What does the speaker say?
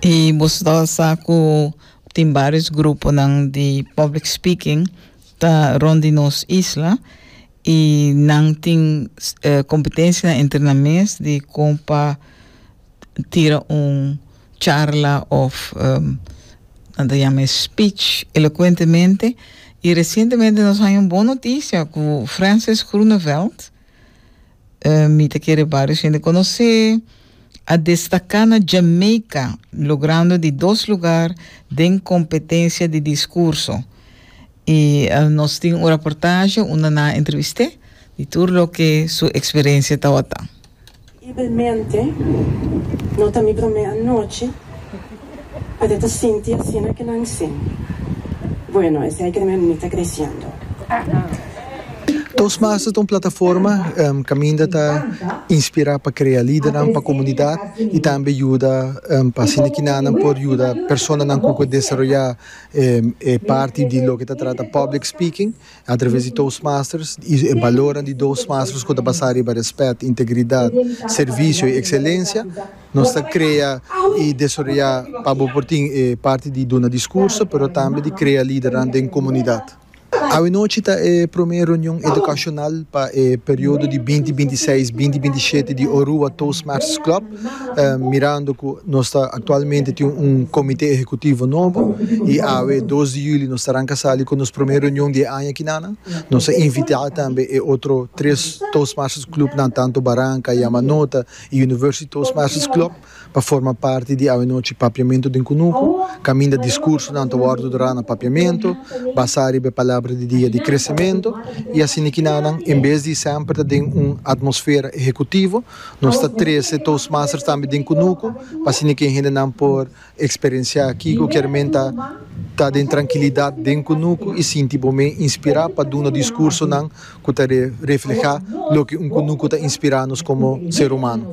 I boso ta sa ku tin bários gruponan di public speaking ta rond di nos isla i nan tin kompetensianan entre nan mes di kon pa tira un charla òf nan ta yama e speech elokuentemente i resientemente nos haña un bon notisia ku Frances Groeneveld Mi ta kere varios hende conoce. A destaca na Jamaica logrando di dos lugar den competencia di discurso. Y nos tin un reportaje unda nan a entreviste di tur loke su experiencia tawata. Terriblemente, no ta mi prome anochi, pero ta sinti asina ke nan sin. Bueno, esei ke mi ta creciendo. Toastmaster ta un plataforma kaminda ta inspirá pa krea lidernan pa komunidat i tambe yuda pa haciendo ki nan nan por yuda personanan ku por desaroyá e parti di loke ta trata public speaking. Atraves di Toastmasters i e balornan di Toastmasters ku ta basá riba rèspèt, integridat, servisio i ekselensia, nos ta krea i desaroyá pa bo por tin e parti di duna diskurso pero tambe di krea lidernan den komunidat. Awenochi ta e promé reunion edukashonal pa e periodo di binti binti seis, binti binti shete di Orua Toastmasters Club. Mirando cu nos ta actualmente tin un comite ehecutivo nobo y awe dos di juli nos ta ranca sali cu nos primer reunion di e aña aki nan. Nos a invita tambe e otro tres Toastmasters Clubnan tanto Barranca, Yamanota y University Toastmasters Club pa forma parti di awenochi Papiamento den Cunuco caminda discursonan ta wordo dra na Papiamento basa riba e palabra di dia di Crecemento y asina ki nan en bes di semper ta den un atmosfera ehecutivo Nos ta trece Toastmasters tambe den Cunuco pa asina que e hendenan por experiencia kico kier menta ta den tranquilidad den Cunuco y sinti bo me inspira pa duna discursonan cu ta refleha loke un Cunuco ta inspira nos como ser humano.